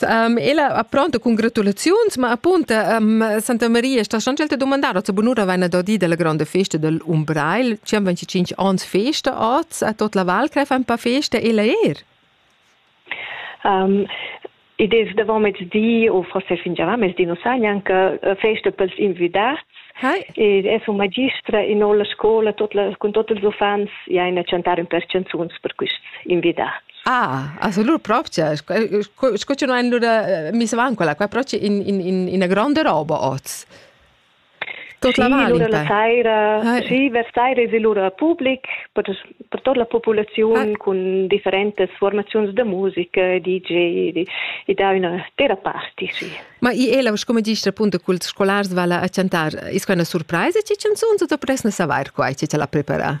Um, ella apronta cun gratulaziuns, ma appunta um, Santa Maria sta schon gelte domandar a bunura vaina da di della grande festa del Umbrail, ci am 25 ans festa az a tot la val greif ein pa festa ella er. Um, id es davant mezdi o forse fin già mezdi non sa neanche eh, festa pels invidats Hi. Ed es un magistra in olla scola tot la, con tot ils uffants ja in a chantar un per canzuns per quists invidats. Ah, absolut propria. Sco che noi allora missavan quella qua proprio in, in, in una grande roba oz. Tot la mali, allora la saira, eh. sì, vers saira es allora public per, per tutta la popolazione eh. con differentes formazioni di musica, DJ, di, e da una terraparty, sì. Ma i ela, come dici appunto, cult scolars vala a cantar, è una sorpresa, ci canzoni o dovresti saper qua, ci te la prepara?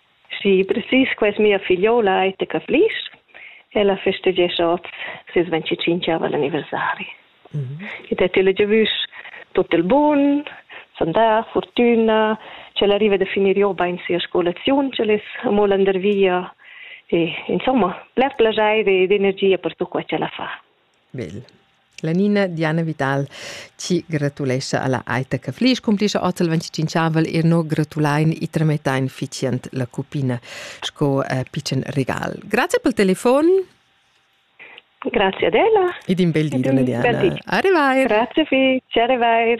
Schi, precis, quai es mia figliola Aittica Flisch. Ella festeggescha oz ses 25 anniversari. Mm -hmm. Ed ha tilla giavüsch tut il bun, sandà, fortüna, ch'ella arriva da finir jo bain sia scolaziun, ch'el es amo landervia e insomma, bler plaschair ed energia per tut quai ch'ella fa. Bel. La Nina Diana Vital ci gratulescha alla Aita Caflisch, cumplischa ozzel 25avel e no gratulein e tramettein ficient la cupina sco uh, pitschen regal. Grazie pel telefon. Grazie ad ella. Ed in bel di, donna Diana. Arrivai. Grazie vi, ci arrivai.